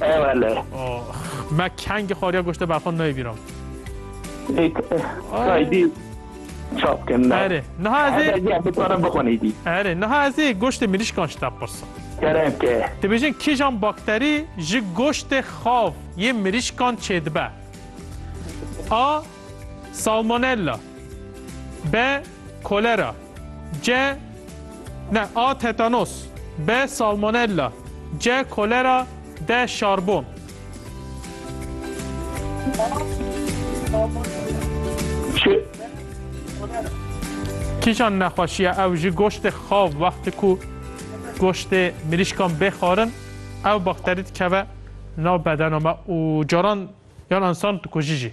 E wele. Me kengî xwariya goşte berxwe nayê bîram. Kaydî çap kin. Erê niha ez ê bixwara bixwenî dî. Erê niha ez ê goştê mirîşkan ji te pirsim. Keremke. Dibêjin kîjan bakterî ji goştê xav yê mirîşkan çêdibe? A. Salmonella B. Kolera C Ne A Tetanos B Salmonella C Kolera D Şarbon Çi? Kîjan nexweşiya ew ji goştê xav wextê ku goştê mirîşkan bê xwarin ew bakterî dikeve nav bedena me û caran yan însan dikujî jî.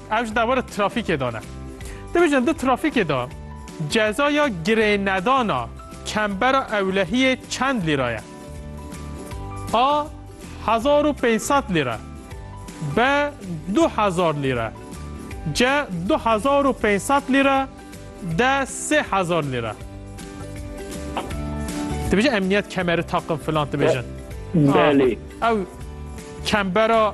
Ev ji dewera trafîkê de ne. Dibêjin di trafîkê de cezaya girênedana kembera ewlehiyê çend lîra ye? A. Hezar û pênc sed lîre B. Du hezar lîre C. Du hezar û pênc sed lîre D. Sê hezar lîre Dibêjin emniyet kemeri taqin filan dibêjin. Belê. Ew kembera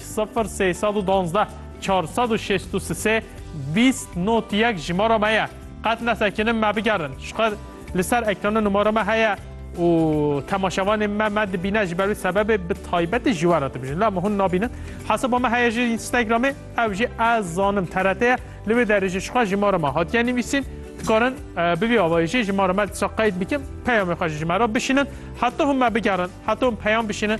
Sifir sê sed û duwazdeh çar sed û şêst û sisê bîst not yek jimara me ye. Qet nesekinim me bigerin. Jixwe li ser ekrana numara me heye û temaşevanên me me dibîne ji ber wî sebebê bi taybetî ji we re dibijin. La me hûn nabînin. Hesaba me heye ji Instagramê ew jî ez zanim TRT ye. Li wê derê jî jixwe jimara me hatiye nivîsîn. Dikarin bi vî avayî jî jimara me disa qeyd bikin. Peyamê xwe ji me re bişînin. Heta hûn me bigerin. Heta hûn peyam bişînin.